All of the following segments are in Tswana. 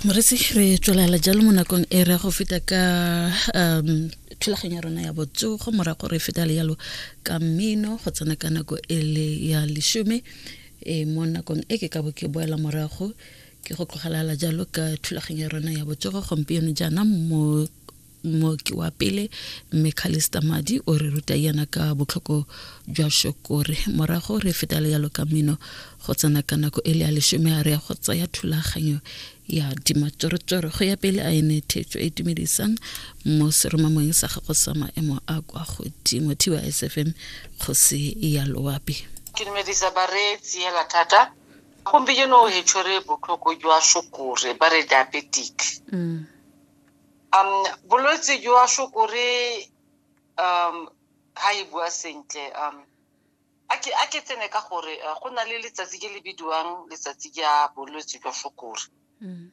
moretsi re tswelela jalo mo nakong e re go feta ka um thulaganyo ya rona ya botsogo morago re feta le yalo ka mmino go tsena ka nako e le ya lesome e mo nakong e ke ka bo ke boela morago ke go tlogelala jalo ka thulaganyo ya rona ya botsogo gompieno jaana mo mooki wa pele mme calista madi o re ruta yana ka botlhoko jwa shokore morago re feta le yalo ka mino go tsena ka nako e le ya lesome a re ya go tsaya thulaganyo ya dimatsoretsore go ya pele a ene thetso e tumedisang mo seromamong sa gago sa maemo a kwa godimo thiwa sfm kgosi ya loapi ke dumedisa bareetsi hela thata gompieno o hetsho re botlhoko jwa shokore ba re diabetic mm. um bolwetse jwa sukuri um ga e bua sentle um a ke a ke tsene ka gore eh, go na le letsatsi ke le bidiwang letsatsi ja bolwetse jwa sukuri mm.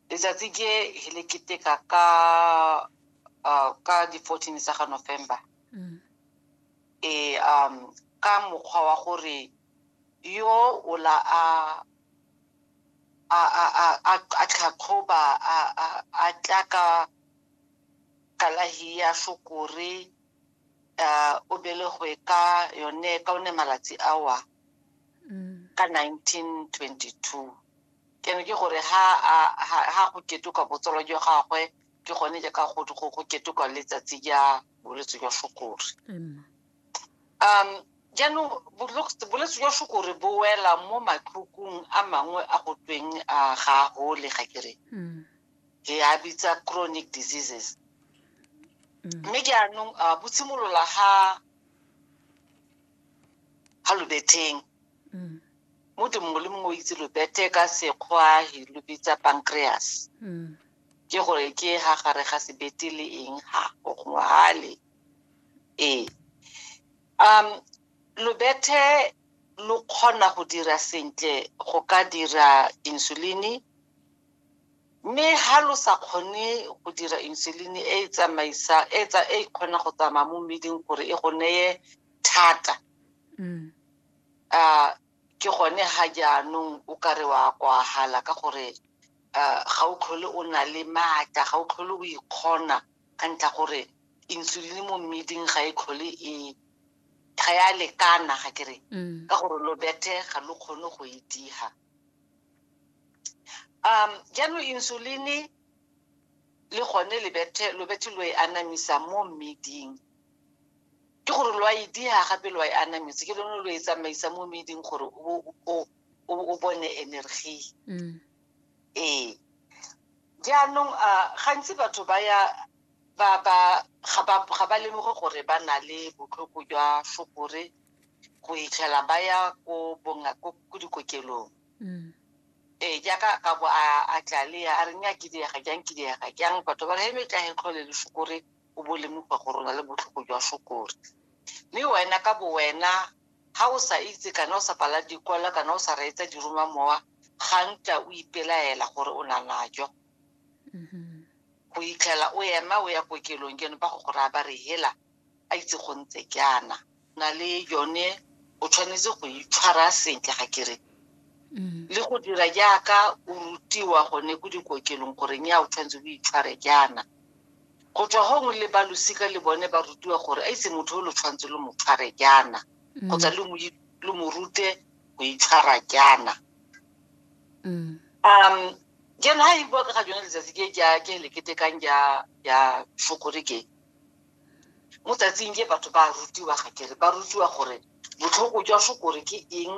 letsatsi ke he le keteka ka uh, ka di-fourteen tsa ga november mm. e um ka mokgwa wa gore yo o la a a a a a a tlhatlhoba a a a tla ka kalahi ya sukuri uh, o belegwe ka yone ka one malatsi awa ka 1922 ke ne ke gore ha a- ha ha go ketuka botsolo jwa gagwe ke gone jaaka go go go ketuka letsatsi ja bolwetse jwa sukuri Emma. um jaanong bolwetse jwa sukore bo wela mo matlhokong a mangwe a go tweng a ga a gole ga kere hmm. ke a bitsa chronic diseases hmm. mme jaanong uh, bo tshimolola ga ga lobetheng hmm. mo di mongwe le mongwe o itse lobethe ka sekgwa lo bitsa pancreas ke gore ke ha gare ga sebete le eng ha gongwe gale ee um lobethe lo kgona go dira sentle go ka dira insuline mme ha lo sa kgone go dira insuline e e tsamaisa e tsa e kgona go tsamaya mo mmeding gore e go neye thata mm. a ke gone ha jaanong o ka re wa kwagala ka gore ga o tlhole o na le maatla ga o tlhole o ikgona e ka ntlha gore insulin mo mmeding ga e tlhole e ga ya lekana ga ke re mm. ka gore lo bethe ga lo kgone go e diga um jaanong insulin le gone lebethe lobethe lo e anamisa mo mmeding ke gore lo a e diga gape lo a e anametse ke lone lo e tsamaisa mo mmeding gore o bone energy mm. ee jaanong a gantsi batho ba ya ba ba ga ba ga ba lemoge gore ba na le botlhoko jwa sukiri go itlhela ba ya ko bonga ko ko dikokelong mm. ee jaaka ka bo a a tlale a re nya ke diega jang ke diega jang batho ba re he metla he tlhole le sukiri o bo lemoga gore o na le botlhoko jwa sokori mme wena ka bo wena ga o sa itse kana o sa pala dikwala kana o sa reetsa diroma mowa ga ntla o ipelaela gore o na najo mm-hmm. go itlhela o ema o ya kokelong keno ba go gore a ba re hela a itse go ntse jaana na le yone o tshwanetse go itshwara sentle ga kere mm. le go dira jaaka o rutiwa gone ko dikokelong gore nya o tshwanetse o itshware jaana go tswa gongwe le ba losika le bone ba rutiwa gore a itse motho o lo tshwanetse lo mo tshware jaana mm. kgotsa lo mo rute go itshwara jaana mm. um jana ha e bua ka ga jone letsatsi ke ke leketekang ja fokore ke Mo tsatsing je batho ba a rutiwa, ga ke re, ba rutiwa gore botlhoko jwa shokore ke eng,